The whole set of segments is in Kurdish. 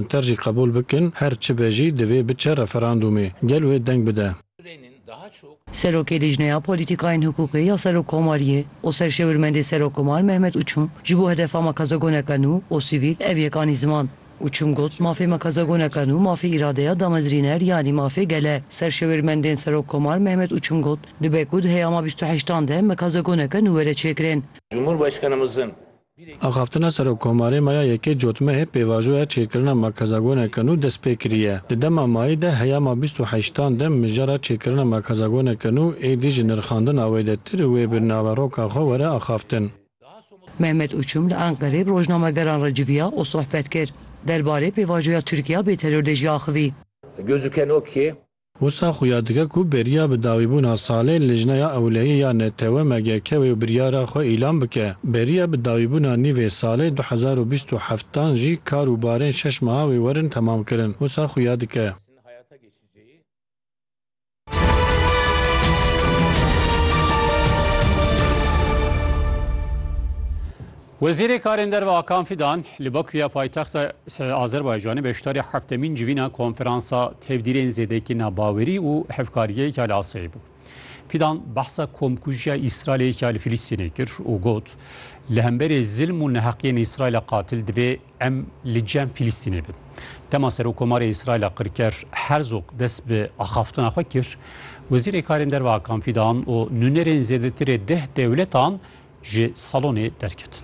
Ter jî qebûl bikin, her çi be jî divê biçe referandûmê. Gel wê deng bide. Serokê Lîjneya Polîtîkayên Hiqûqê ya Serokkomariyê û Serşêwirmendê Serokkomar Mehmet Uçum ji bo hedefa makazagoneke nû û sivîl ev yek anî ziman. Uçum got, Mafê makazagoneke nû mafê îradeya damezrîner yanî mafê gel e. Serşêwirmendên Serokkomar Mehmet Uçum got, Dibe ku di heyama bîst û heştan de mekazagoneke nû were çêkirin. Cumhurbaşkanımızın Axaftina Serokkomarê Maya Yekê Cotmehê pêvajoya çêkirina Makazagone Kenu dest pê kiriye. Di dema mayî de heyama bîst û heşt an de mijara çêkirina Makazagone Kenu êdî ji nirxandina wê de tir û wê bi naveroka xwe were axaftin. Mehmet Uçum li Enqerê bi rojnamegeran re civiya û sohbet kir. Derbarê pêvajoya Tirkiya bêteror de jî axivî. Gözüken o ki Wisa xuya dike ku beriya bi dawîbûna salê Lijneya Ewlehiyê ya Netewe MGK wê biryara xwe îlan bike. Beriya bi dawîbûna nîvê salê du hezar û bîst û heft dan jî kar û barên şeş meha wê werin temamkirin. Wisa xuya dike. Wezîrê Karên Derve Akan Fidan li Bakuya paytexta Azerbaycanê beşdarî heftemîn civîna konferansa tevdîrên zêdekî nabawerî û hevkariyeke li Asiyayê bû. Fidan behsa komkujiya Îsraîlêka li Filistînê kir û got, Li hemberî zilm û neheqiyên Îsraîla qatil divê em li cem Filistînê bin. Dema Serokomarê Îsraîla Qirker Herzog dest bi axaftina xwe kir, Wezîrê Karên Derve Akan Fidan û nûnerên zêdetirê deh dewletan ji salonê derket.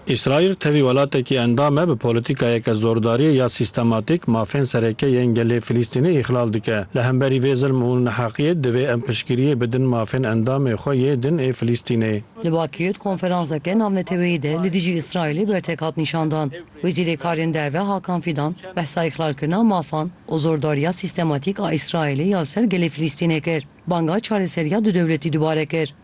Îsraîl tevî welatekî endam e bi polîtîkayeke zordarî ya sîstematîk mafên sereke yên gelê Filîstînê îxlal dike. Li hemberî vê zilm û neheqiyê divê em piştgiriyê bidin mafên endamê xwe yê din ê Filîstînê. Li Bakîr konferanseke navneteweyî de li dijî Îsraîlê bertek hat nîşandan. Wezîrê Karên Derve Hakan Fîdan behsa îxlalkirina mafan û zordariya sîstematîk a Îsraîlê ya li ser gelê Filîstînê kir, banga çareseriya du dewletî dubare kir.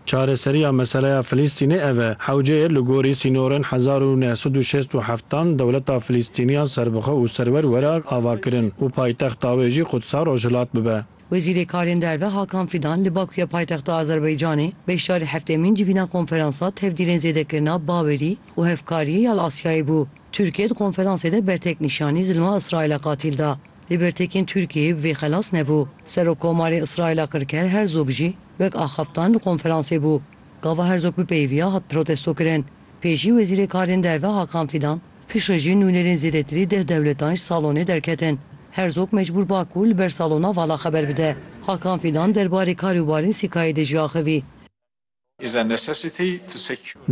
Çareseriya meseleya Filîstînê ev e, hewceyê li gorî sînorên hezar û neh sed û şêst û heft dan dewleta Filîstîniya serbixwe û serwer were avakirin û paytexta wê jî Qudsa Rojhilat bibe. Wezîrê Karên Derve Hakan Fîdan li Bakuya paytexta Azerbaycanê beşdarî heftêmîn civîna konferansa tevdîrên zêdekirina bawerî û hevkariyê ya li Asyayê bû. Tirkiye di konferansê de bertek nîşanî zilma Îsraîla qatîl da. Lê bertekên Tirkiyeyê bi vê xelas nebû. Serokkomarê Îsraîla Kirker Herzog jî wek axaftan li konferansê bû. Gava Herzog bi peyvîya hat protestokirin. Pê jî Wezîrê Karên Derve Hakan Fîdan, Piştre jî nûnerên zêdetirî deh dewletan ji salonê derketin. Herzog mecbûr ba ku li ber salona vala xeber bide. Hakan Fîdan derbarê karê Wawrinsikayê de jî axivî.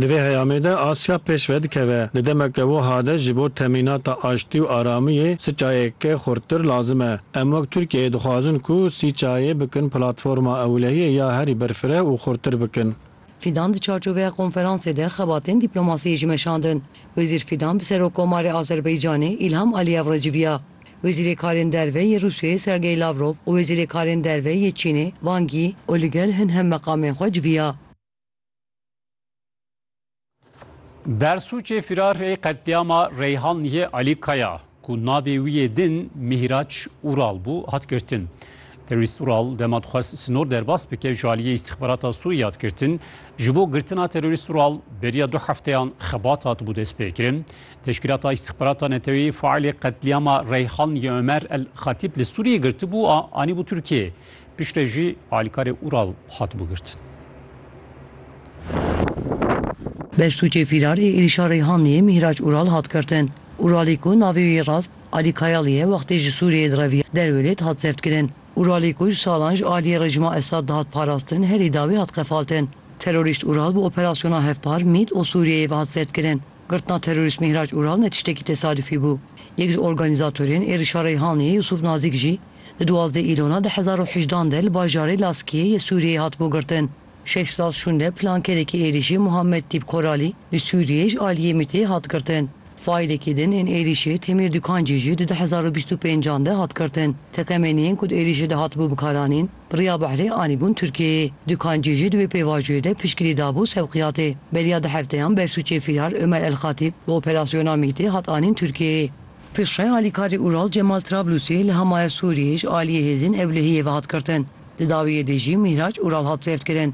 Di vê heyamê de Asya pêş ve dikeve. Di demeke wiha de ji bo temînata aştî û aramiyê siçayeke xurttir lazim e. Em wek Tirkiyeyê dixwazin ku Siçayê bikin platforma ewlehiyê ya herî berfireh û xurttir bikin. Fidan di çarçoveya konferansê de xebatên dîplomasiyê jî meşandin. Wezîr Fidan bi Serokkomarê Azerbaycanê Îlham Aliyev re civiya. Wezîrê Karên Derve yê Rûsyayê Sergey Lavrov û Wezîrê Karên Derve yê Çînê Wang Yi û li gel hin hemmeqamên xwe civiya. Bersûcê fîrar ê qetlîama Reyhanliyê Alî Kaya ku navê wî yê din Mîhraç Ural bû hat girtin. Terorîst Ural dema dixwest sinor derbas bike ji aliyê îstîxbarata Sûriyê hat girtin. Ji bo girtina terorîst Ural beriya du hefteyan xebat hatibû destpêkirin. Teşkîlata Îstîxbarata Neteweyê faîlê qetlîama Reyhanliyê Omer El Xatîb li Sûriyê girtibû a anîbû Tirkiyeyê. Piştre jî alîkarê Ural hatibû girtin. Beştûkê fîrar ê êrîşa Reyhanliyê Mîhraç Ural hat girtin. Uralî ku navê wî rast Alî Kayalî ye wextê ji Sûriyeyê direviya Derwêlêd hat zevtkirin. Uralî ku ji salan ji aliyê rejîma Esad dihat parastin herî dawî hat qefaltin. Terorîst Ural bi operasyona hevpar mît û Sûriyeyê ve hat zevtkirin. Girtina terorîst Mîhraç Ural ne tiştekî tesadifî bû. Yek ji organîzatorên êrîşa Reyhanliyê Yûsûf Nazîk jî Di duwazdeh Îlona du hezar û hejdan de li bajarê Laskiyê yê Sûriyeyê hatibû girtin. Şehzad Şûnde plankerêkê êrîşê Muhammed Tîb Koralî li Sûriyeyê ji aliyê MĪT'ê hat girtin. Faîlekî din ên êrîşê Temîr Dûkancî jî di du hezar û bîst û pênc an de hat girtin. Teqemeniyên ku di êrîşê de hatibû bikaranîn bi riya behrê anîbûn Tirkiyeyê. Dûkancî jî di wê pêvajoyê de piştgirî dabû Sevqiyatê. Beriya du hefteyan bersûcê Fîrar Ömer El Xatîb bi operasyona MۊT'ê hat anîn Tirkiyeyê. Piştre alîkarê Ural Cemal Trablusî li Hamaya Sûriyê ji aliyê hêzên Ewlehiyê ve hat girtin. Di dawiyê de jî Mîhraç Ural hat zevtkirin.